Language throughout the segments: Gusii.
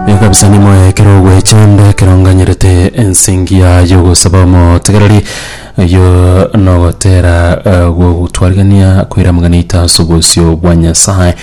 Igo kabisa nimoyo ekero ogwecha onde ekero nganyerete ensingia y'ogosaba omotegereri oyio nogotera eh, gogotwarigania koira amagana aito ase obosio bwa Nyasaye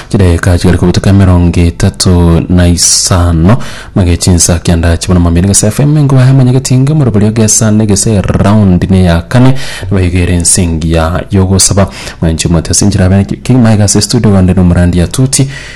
chidageka chigare kobutuka emerongo etato na isano mage chinsa kianda chibona mambia gese FM nkobaye amanyageti inge moroborio gesa ne gese round ne ya kane baigere ensingia y'ogosaba mwenche mwete sinchirabe kigima igase studio gande no murandi atuti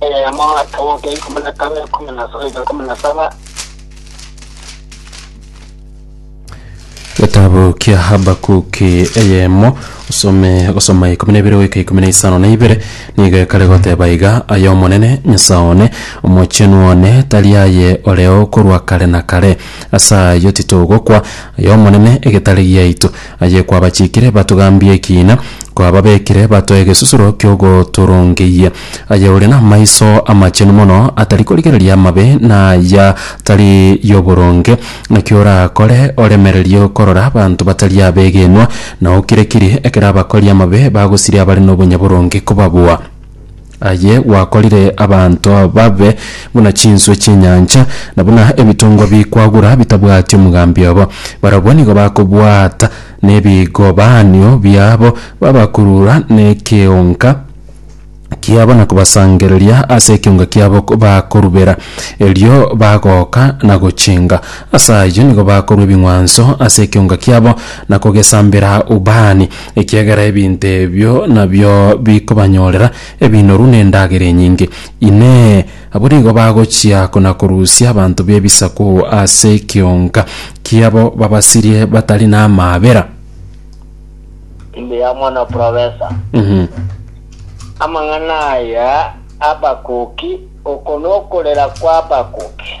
Eyemo akamoka ikumi na kabere ikumi na soika ikumi na saba getabu kia habakuki eyemo osome gosoma ikumi na ibere goika ikumi na isano na ibere nigo ekare goteba iga aye omonene nyasae one omochenu one tari aye oreo korwa kare na kare ase ayio titogokwa aye omonene egetare giaito Aye kwabachikire batogambie ekiina, kwababekire batoe egesusuro ki'ogotorongeyia. Aye ore namaiso amachenu mono, atari korigereria amabe na aya tari yoboronge. Naki orakore oremererie korora abanto batari abegenwa, na okire-kiri ekero abakori amabe bagosiria abare nobonyaboronge kobabua. Aye gwakorire abanto babe buna chinswe chi'enyancha, na buna ebitongwa bikwagura bitabwati omogambi obo. Barabwo nigo bakobwata nebigobaanio biabo, babakurura nekeonga kiabo na kobasangereria ase ekeonga kiabo bakorubera, erio bagoka na gochenga. Ase ayio nigo bakorua ebing'wanso ase ekeonga kiabo na kogesambera ubani. Ekiagera ebinto ebio nabio bikobanyorera ebinoru na endagera enyinge. Inee! Abwo nigo bagochia kona-korusia abanto b'ebisaku ase ekionka kiabo babasirie batari namaabera? Timbe ya Omwana Profesa. Mhm. Amang'ana aya abakoki, oko nokorera kw'abakoki.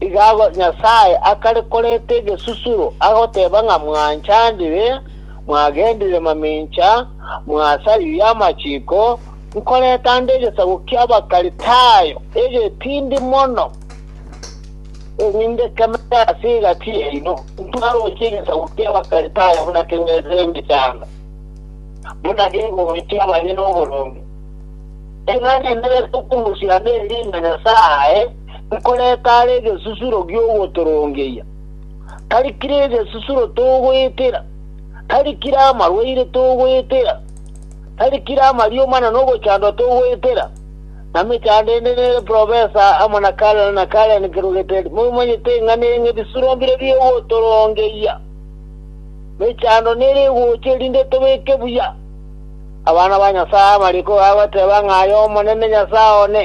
Iga Nyasae akare korenta egesusuro, agoteba ng'a mwanchandire, mwagendire mamincha, mwasaririe amachiko, nkoreta nde egesaku ki'Abakalitayo egetindi mono, erinde kemete ase egati yaino, ntwaroche egesaku ki'Abakalitayo buna kegwete emechando, buna kegochia abanyene oboronge. Iga nenerete okorusia nde riina Nyasae, nkorete are egesusuro gi'ogotorongeria, tari kera egesusuro togoetera, tari kera amarwaire togoetera, tari kera amarioma na nogochandwa togoetera, na mechando ende nere profesa amo na Karen na Karen kerogete momanyete ng'a neng'e ebisuro mbire bi'ogotorongeria. Mechando nere egocha erinde tobeke buya abana ba Nyasae amariko aye agoteeba ng'a aye Omonene Nyasae one.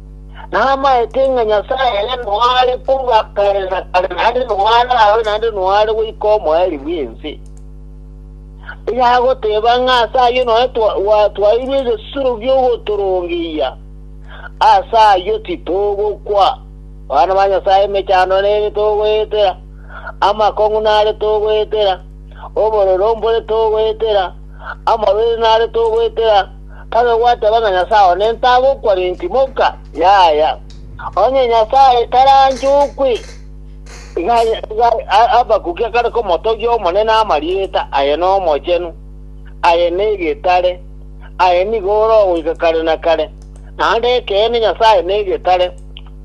Namaete ng'a Nyasae ere noare korwa kare na kare, naende noare abe, naende noare goika omoerio bw'ense. Onye agoteba ng'a ase ayio nonya twa- gwa- twaeirwe egesuro gi'ogotorongeyia, ase ayio titogokwa. Abana ba Nyasae emechando nere togoetera, amakong'u nare togoetera, obororo mbore togoetera, amabere nare togoetera, Kare gwateba ng'a Nyasae one ntagokwa rentimoka, yaya, onye Nyasae taranchokwe, iga Habakuki akare komotogia Omonene amarieta aye n'omochenu, aye negetare, aye nigo ore ogoika kare na kare, naende ekeene Nyasae negetare.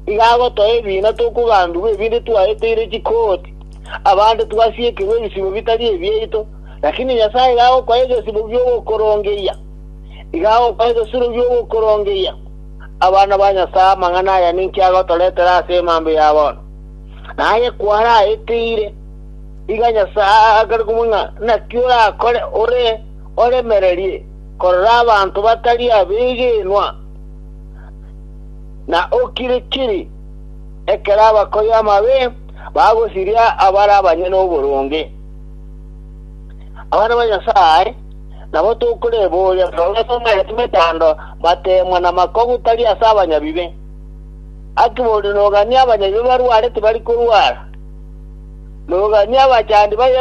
Iga agotoa ebiina tokogandugwa ebinde twaeteire chikooti, abande twasiekirwe ebisibo bitari ebiaito, Lakini Nyasae iga agokoa egesibo gi'ogokorongeria, iga agokoa egesuro gi'ogokorongeria, abana ba Nyasae, amang'ana aya ninki agotoretera ase emambia ya bono? Naye kwaraeteire, iga Nyasae akare komwa ng'a naki orakore ore oremererie korora abanto batari abegenwa, na okiri-kiri ekero abakori amabe bagosiria abare abanyene oboronge. Abana ba Nyasae nabo tokoreboria buna babasomereti mechando bateemwa namakogu tari ase abanyabibe. Aki bono noganie abanyabibe barware tibari korwara. Noganie abachandi baye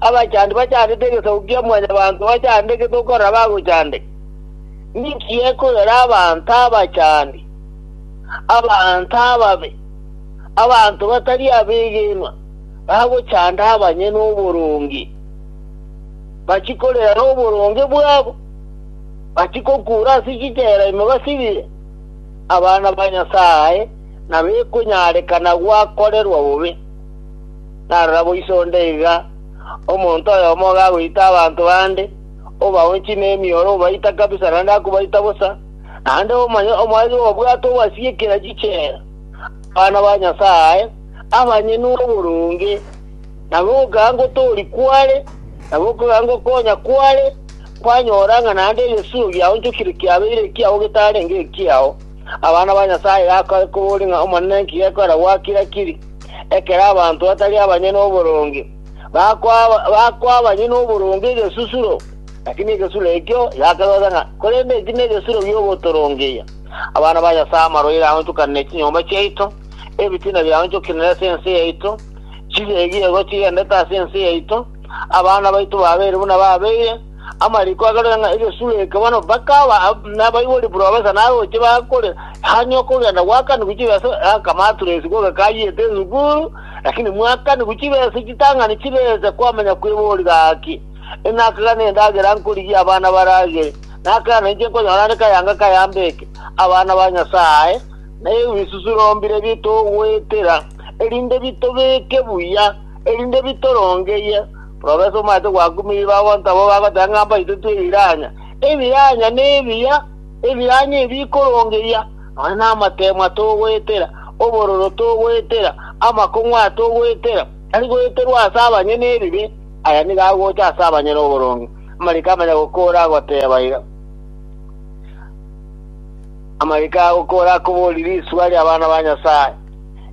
abachandi bachandete egesaku kia mwanyabanto bachandeke tokorora bagochandeka. Ninki gekoyora abanto abachandi, abanto ababe, abanto batari abegenwa? bagochanda abanyene oboronge, bachie korera noboronge bwabo, bachie kokuura ase chichela ime basibire, abana ba Nyasae nabekonyarekana gwakorerwa bobe. Narora boiso onde iga, omonto oyomo iga agoita abanto bande, obaonchie nemioro, obaita kabisa, naende akobaita bosa, naende omanye omoerio obwate obasiekera chichela, abana ba Nyasae, abanyene oboronge, na gokogaka ngotoori kware, na gokogaka ngokonya kware, kwanyora ng'a naende egesuuro giaonchokire kiabeire ekiao getarenge ekiao. Abana ba Nyasae gakore kobori ng'a Omonene inki gekorera gwakire akiri, ekero abanto batari abanyene oboronge bakoa- bakoa abanyene oboronge egesusuro, lakini egesusuro ekio giakebaisa ng'a korende eki negesusuro giogotorongeria abana ba Nyasae amarwaire aonchokanire chinyomba chiaito, ebitina biaonchokinire ase ense yaito, chigegigo chigendete ase ense yaito, abana baito babeire buna babeire, amariko agarore ng'a egesuro eke bono bakaba ab- nabaibori buru abasa naroche bakore hanya okogenda gwakanigwa chibe ase akamaturesi gogekayete esukuru, lakini mwakanigwa chibe ase chitang'ani chibese kwamenya kwebori gaki, Enakega nendagera nkorigia abana baragere, nakega nainche nkonyora are kayanga kayambe eke, abana ba Nyasae, na ebisusurombire bitogoetera, erinde bitobeke buya, erinde bitorongeyie. Profesa omanyete gwakumirie bagonto abwo bagoteba ng'a mbaitete ebiranya. Ebiranya nebiya, ebiranya ebi bikorongeyia, nonya namateemwa togoetera, obororo togoetera, amakong'u aya togoetera, tari goeterwa ase abanyene ebibe, aya nigo agocha ase abanyene oboronge. Amariko amanya gokoora agoteba iga. Amagiko aya gokora akobori risuba ri'abana ba Nyasae,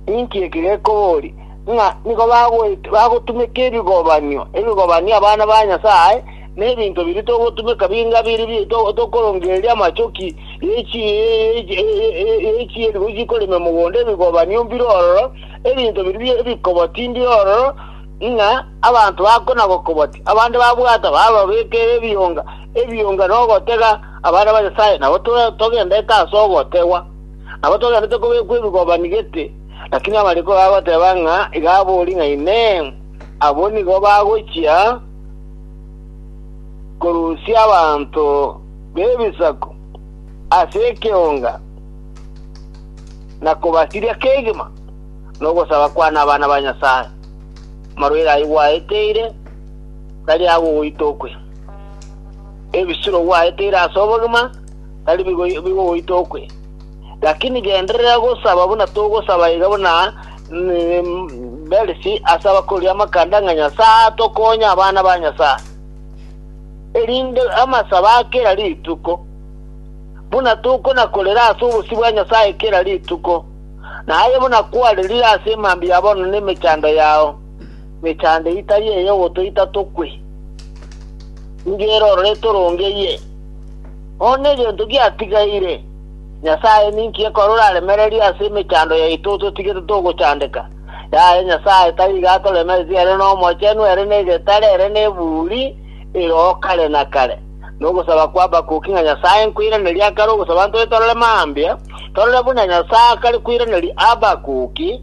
ninki eki gekobori? Ng'a nigo bagoet- bagotumeka ebigobanio, ebigobanio abana ba Nyasae, na ebinto biria togotumeka binga biri bi- to- tokorongereria amachoki y'echi- ye- ye- ye- y'echieeri gochia korema emogondo, ebigobanio mbire ororo, ebinto biria bi- ebikoboti mbire ororo, ng'a abanto bakona gokoboti, abande babwata bababekere ebionga, ebionga nogotega, Abana ba Nyasae, nabo togendete ase ogotegwa, nabo togendete kobekwa ebigobani gete, lakini amariko iga agoteba ng'a iga abori ng'a Inee, abwo nigo bagochia korusia abanto b'ebisaku ase ekeonga, na kobasiria kegima nogosaba kwane abana ba Nyasae? Amarwaire ayio gwaeteire tari agogoita okwe. Ebisuro gwaeteire ase obogima tari bigo bigogoita okwe, lakini genderera gosaba buna togosaba iga buna Belsi ase abakoria amakanda ng'a Nyasae atokonye abana ba Nyasae, erinde amasabo a kera rituko, buna tokona-korera ase obosio bwa Nyasae kera rituko, na aye buna kwarerire ase emambia ya bono na emechando yao. Mechando itari ey'ogotoita tokwe, nigo erorere torongeyie. Bono negento giatigaire, Nyasae ninki ekore oraremererie ase emechando yaito ototigete togochandeka? Yaya Nyasae tari iga atoremeretie ere n'Omochenu, ere negetare, ere neburi ere o kare na kare. Nogosaba kwa Habakuki ng'a Nyasae nkoiranerie akare ogosaba ntore torore mambia, torore buna Nyasae akare koiraneria Habakuki,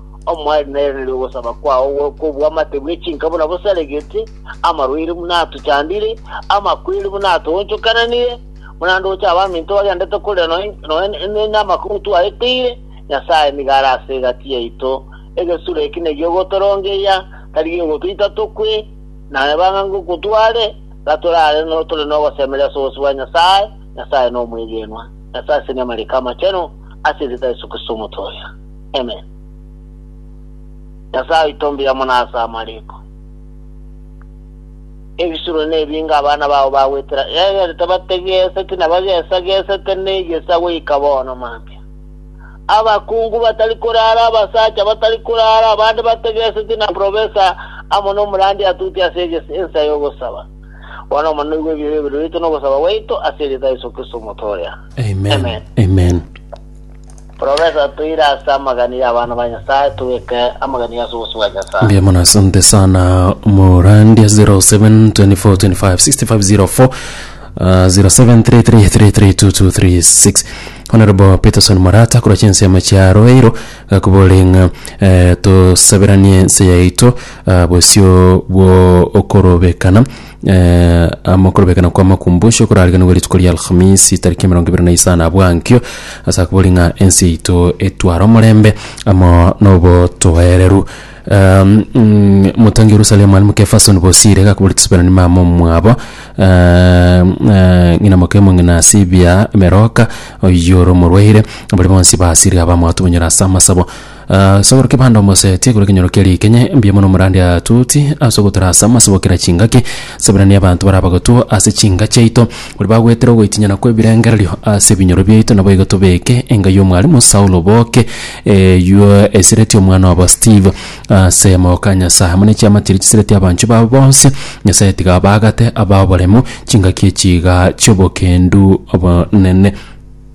Omwari nairanerie ogosaba kwao gwe kobw'amate bwe chinka buna bosaregete, amarwaire buna atochandire, amakweri buna atoonchokananire, buna ndoche abaminto bagendete korera nonya nonya namakong'u twaeteire, Nyasae nigo are ase egati yaito, egesura eki negi'ogotorongeria, tari gegotoita tokwe, naye bang'a ngokotware, gatorare no tore nogosemeria ase obosio bwa Nyasae, Nyasae nomwegenwa, Nyasae ase nyamarika amachenu, ase erieta Yesu Kristo Omotooria. Amen. Nyasae oito mbuya mono ase amariko. Ebisuro nebinge abana bao bagwetera, egere tibategeseti na bagesagesete negeisa goika bono mambia. Abakungu batari korara, abasacha batari korara, abande bategeseti na profesa amo nomorandia atuti ase egesi- ensa y'ogosaba. Bono Omonene oigwe ebibe biaito nogosaba gwaito ase erita Yesu Kristo Omotoria. Amen. Amen. Amen. Professor, toire ase amagani y'abana ba Nyasaye, tobeke amagani ase obosio bwa Nyasaye. Mbuya mono asante sana Morandi 0724256504 uh, 0733332236 Honorable Peterson Morata kura chinsi amachiaro eiro gakuborenga eh, tosaberanie ense yaito uh, bosio bwo okorobekana Eh, ama okorobekana kwa makumbusho korariganigwe rituko ria alhamisi tariki emerongo ebere na isano abwankio ase akobori ng'a ense yaito etware omorembe amo nobotoereru Um, mm, motangi yerusalemu ari mokefasoni bosire gakobori tisibera nimama omwabo um, eh, ng'ina mokemo ng'ina asibia emeroka oyore omorwaire bari bonsi basire abamwatobonyera ase amasabo Ase ogoro kebande omoseti ekoro ekenyoro kia rikenya, mbuya mono omorande atoti ase ogotorasa amase gokera chingaki, Sabirani abanto baria abagotwo ase chinka chiaito, baria bagwetera ogoitinyana kw'ebirengererio ase ebinyoro biaito, naboigo tobeke enga y'omwalimu Saulo boke, eyio esireti omwana obo Steve ase amaboko a Nyasae, amo ne chiamati eria chisireti abanchwa babo bonsi, Nyasae tiga abaagate abe aboremu chingaki echi igaa chi'obokendu obonene.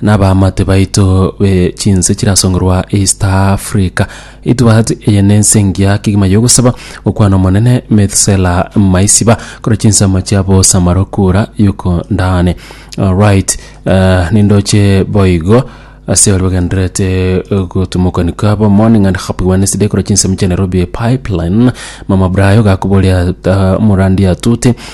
Nabamate baito be chinse chirasongerwa East Africa. Itwat eye ne ense engiya kegima yogosaba gokwana omonene Methsela Maisiba kore chinsemo chia bosa marokura yuko ndane. Alright, uh, nindoche boigo ase ori bagenderete gotumokani kwabo morning and happy wednesday kora chinsemo chia nairobi pipeline mama brayo gakuboria uh, murandi atute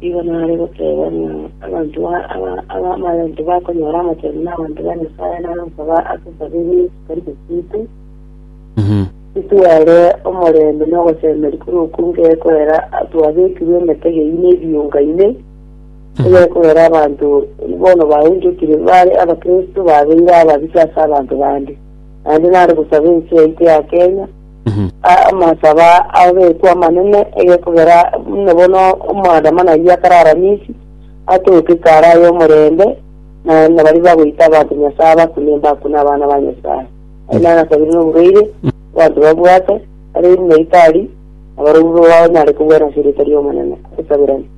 Nigo nare goteeba ng'a abanto ba- aba- aba- abanto bakonyora amatari na abanto ba Nyasae nare gosaba ase esaburi etari gosiikwa, Mhm. Titware omorembe na ogosemeria korwa okunge ekorera twabekirwe emetego eyio na ebiunga ime ebe ekorera abanto bono baunchokire bare abakristo babeire ababisa ase abanto bande naende nare gosaba ense yaito ya Kenya Amasaba abekwa amanene egekogera buna bono omoadamano ayio akarara Misi, atoke kare aye omorembe, na na baria bagoita abanto Nyasae abakune mbakune abana ba Nyasae. Aye naro asabire noborueire abanto babwate, bare buna ritari, na barobwo baonyare kobwena ase erieta ri'Omonene. Tosabirane.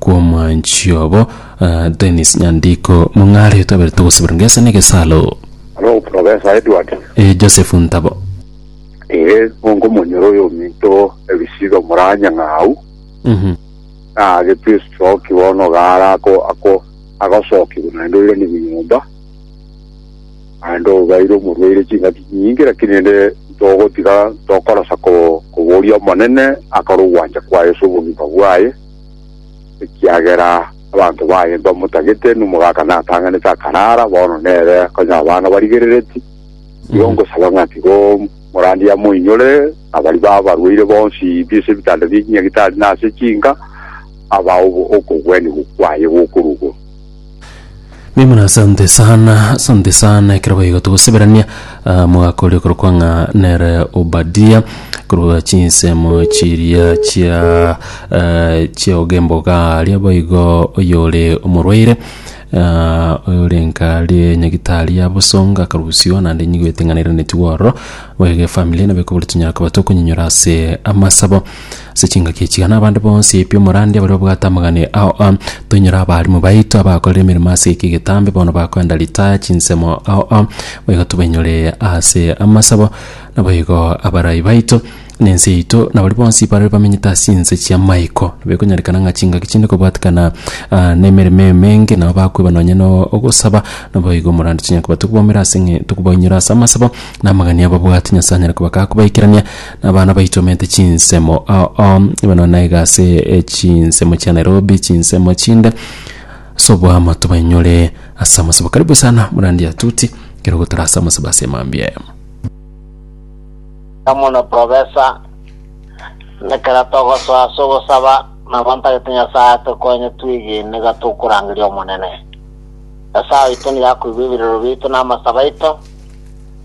kw'omwanchi obo, Dennis Nyandiko, mong'aretwe aberete ogosibora ngesa na egesalo. Aro Professor Edward. E. Joseph Ntabo. Ee, mongo monyore oyo ominto ebisiga omoranya ng'aau, na agetwe estroke bono gaara ako ako agosokigwa naende oiranigwe nyomba, naende obaire omorwaire chingaki chinyinge, lakini rende ntogotiga ntokorosa ko koboria Omonene akore ogwancha kwaye ase obogima bwaye. ekiagera abanto baye mbamotagete, nomogaka natang'anete akaraara, bono nere konya abana barigerereti. Igo ngosaba ng'a tiga omorandia amoinyore, na baria babarwaire bonsi pi ase ebitanda bi'echinyagitari na ase chinka, abae obo- okogwenigwa kwaye gokorwa igoro. Mimura asante sana asante sana ekero baigo togoseberania ah, omogaka oria okorokwa ng'a nere obadia korwa chinsemo chiria chia eh, chia ogemboga aria baigo oyore omorwaire ah, oyore nkari nyagitari ya bosonga akarusio naende nyigwete ng'a nairaneti ororo boigo efamiri nabo ekobori tonyare koba tokonyinyora ase amasabo Ase chingaki echi igana abande bonsi b'omorande baria babwate amagane ao a toinyore abaalimu baito abakorire emeremo ase eke getambe bono bakoenda ritaya chinsemo ao a bo igo tobainyore ase amasabo naboigo abarai baito na ense yaito na baria bonsi bare bamenyete ase chinse chi'amaiko. Nabo ekonyarekana ng'a chingaki chinde kobwatekana nemeremo emenge nabo bakoeba nonye na ogosaba naboigo omorande chinya koba tokobaumera ase ng'a tokobaumera ase amasabo na amagani ababwate Nyasaye anyare koba gakobaikeranera. Abana baichomete chinsemo oo bono naiga ase chinsemo chia Nairobi chinsemo chinde ase oboamo tobainyore ase amasabo karibu sana Murandi Atuti ekero gotara ase amasabo ase mambia emo. Anga mono profesa, ekero togosoa ase ogosaba, nabo ntagete Nyasae atokonye twige nigo tokorangeria Omonene. Nyasae oito nigo akoigwa ebirero biaito na amasabo aito.